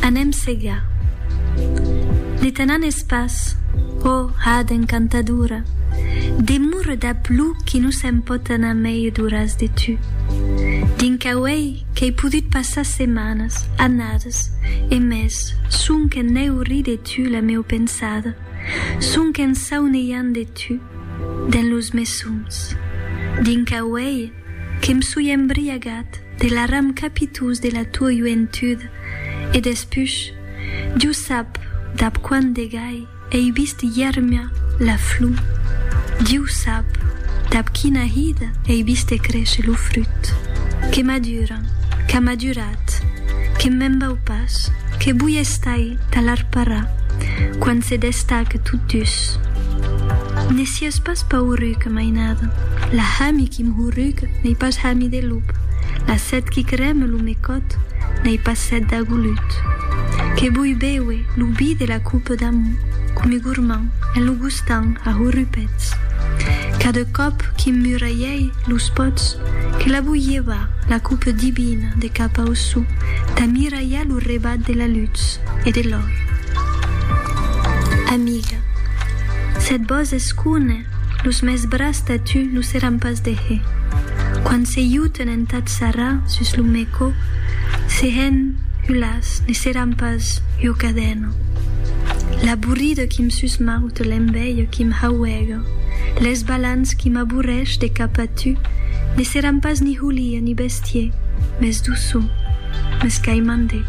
Anem segar. Ne tenan es pas. Ò, hada encantadora, demure dab lo qui no se'n pòt anar mei d'oras de tu. Dins quau ei qu'ei podut passar setmanas, annadas, e mès, sonque n'eu ri de tu la meu pensada, sonque en sauneiant de tu, dens los mes sòns. Dins quau ei. Que m' soi embriagat de l'aram capitós de la tua joentud, e despuch, Diu sap dab quant de gai ei vist ièrmia la flor, Diu sap dab quina hida ei vist crécher lo frut, que madura, qu'a madurat, que me'n vau pas, que voi estai ta l'arparar, quan se destaque tot dus. Si es pas pauruc, mainada. La hami qui m'hurruca n'ei pas hami de lop, la set qui creme lo me còt n'ei pas set d'agolut. Que voi béuer lo vi de la coupe d'amor come gormand en lo gustant a hurrupets. Cada còp qui m'muralhèi los pòts, que la voi llevar, la coupe divina de cap au sou, tà miralhar lo rebat de la lutz e de l'òr. Amiga. Sèt bòs escune, los mès bras tà tu lo seràn pas de he. Quan se iuten entath sarrà sus lo mèco, se hèn hulàs ne seràn pas jo cadèno. L'aburrido qui m sus maute l'enveio qui m hauègo, lès balans qui m'aburrèsh de cap a tu ne seràn pas ni hulie ni bèstie, mès doçu, mès qu'ai mandé.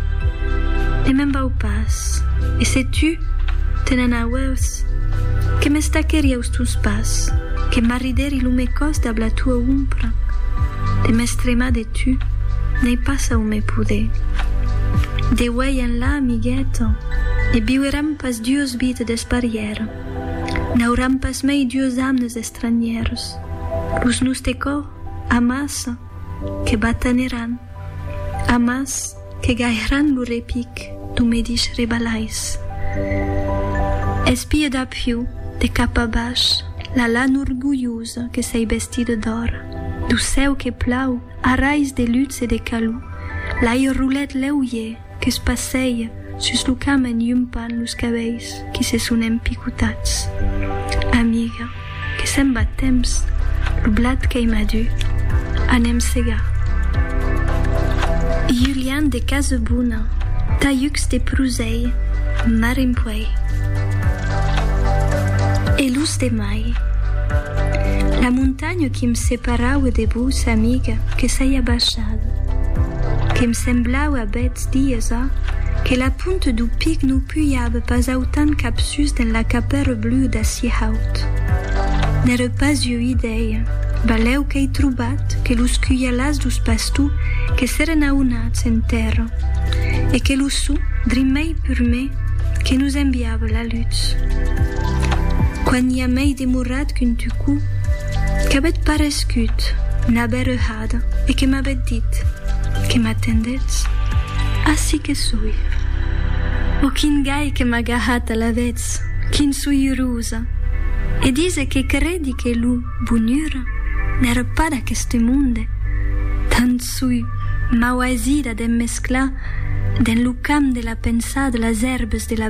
Ne me'n vau pas, e se tu, Te n'anauèus, que m'estaquèri aus tons pas, que m'arridèri lo me còs dab la tua ompra, de m'estremar de tu, n'ai pas au me poder. De uèi enlà, amigueta, ne viueram pas duos vides d'esparièra, n'auram pas mei duos amnes estranhèrs, los noste còr, amassa, que bataneran, amas que gairàn lo repic du medish rebalais. Espie d'apiu, de cap a baish, la lan orgulhosa que s'ei bestida d'òr, du cèu que plau, arais de luts e de calou, l'ai rolet lèu iè, Que's passeja sus lo cam en iumpant los cabelhs qui se son empicotats. Amiga, que se'n va temps, lo blat qu'ei madur, anem segar. Julian de Casebona, talhucs de prusei, marin puei. E los de mai? La montanha. L'anyo qui'm separaue de vos, amiga, que s'ai abachada. Que'm semblaue a bèths dies a, que la punte dou pic no pujave pas autant capsús dens la capèra blua d'ací haut. N'ère pas ua idèia, balèu qu'ai trobat que los cujalàs dous pastous que s'èren aunats en tèrra, e que lo sou, drimei purmé, Que nos enviava la lutz. Quan i a mei demorat qu'un tucou qu'avèt parescut na berrehada e que m'avèt dit, Que m'atendètz? Ací que soi. Ò quin gai que m'a gahat alavetz, quin soiurosa! E dise que credi que lo bonura n'èra pas d'aqueste monde, tant Soi mau aisida d'em mesclar dens lo camp de la pensada las èrbes de la